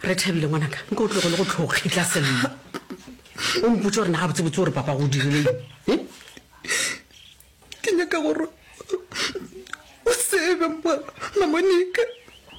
re thabile ngwanaka nka o tlogo le go tlhokgitla sello o mpotse gore na ga botsebotse gore papa go dirileng eh? ke nyaka gore o tsebe mamonika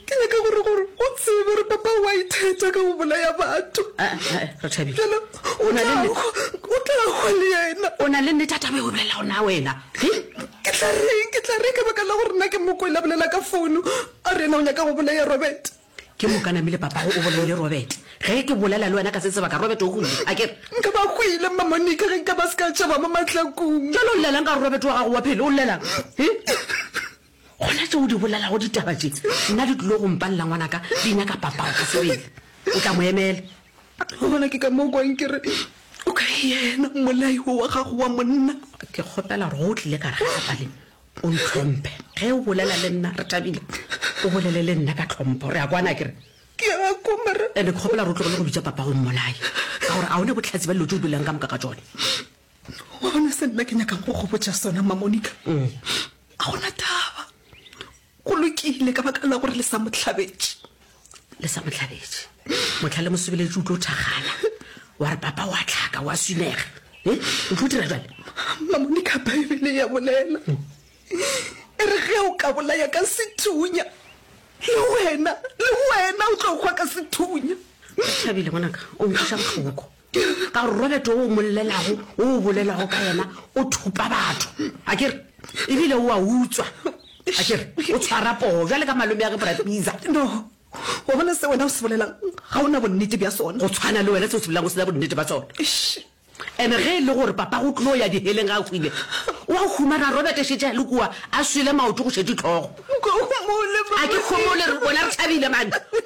ke nyaka gore gore o tsebe gore papa wa itheta ka go bolaya batho ah, ah, ah, fela o tla go le yena o na le nnete a tabe o bolela gona wena eh? ke tla reng ke tla reng ka baka la gore nna ke mokwela bolela ka founu A re, Na o nyaka go bolea Robert? Ke moka namile papago o bolaile Robert. Ge ke bolela le wena ka se sebaka, Robert o hwile, a ke re? Nka ba hwile, Mma Monica, ge nka ba se ka tšhaba mo mahlakong. Bjale o llelang ka gore Robert wa gago wa phele? O llelang? He? Gona tše o di bolelago ditaba tše, nna di tlilo go mpalela ngwanaka, di nyaka papago ka sebele. O tla mo emela. Wa bona, ke ka mo o kwang ke re, O ka yena, mmolai wo wa gago wa monna. Ke kgopela gore go o tlile ka re ga a paleng, O ntlhomphe. Ge o bolela le nna, re thabile. O bolele le nna ka tlhompho. Re a kwana, a ke re? Ke a kwa, mara. Ene ke kgopela gore o tlogele go bitša papa go mmolaye. Ka gore a o ne bohlatse ba dilo tše o bolelago ka moka ka tšone. Wa bona se nna ke nyakang go go botša sona, Mma Monica? A go na taba. Go lokile ka baka la gore le sa mo hlabetše. le sa motlhabetše motlha le mosebeletše o tlo thagana wa re papa wa tlhaka wa swinega e eh, o tlo dira jale mamone ka baebele ya bolela e re ge o ka bolaya ka sethunya le wena le wena o tlo kgwa ka sethunya thabile ngwanaka o nkgoša botlhoko Ke re, ka gore Robert o o mo llelago, o o bolelago ka yena, o thupa batho. A ke re? Ebile o a utswa. A ke re? O tshwara poo, bjale ka malome a ge Bra Pizza. No, wa bona se wena o se bolelang, ga o na bonnete bja sona. Go tshwana le wena, se o se bolelang o se na bonnete bja sona. Eish. And ge e le gore Papago o tlo ya diheleng ga a hwile, o a humana Robert a šetše a le kua, a swele maoto go šetše tlhogo. Go homole, Bra Pizza. A ke homole, rena re thabile mane.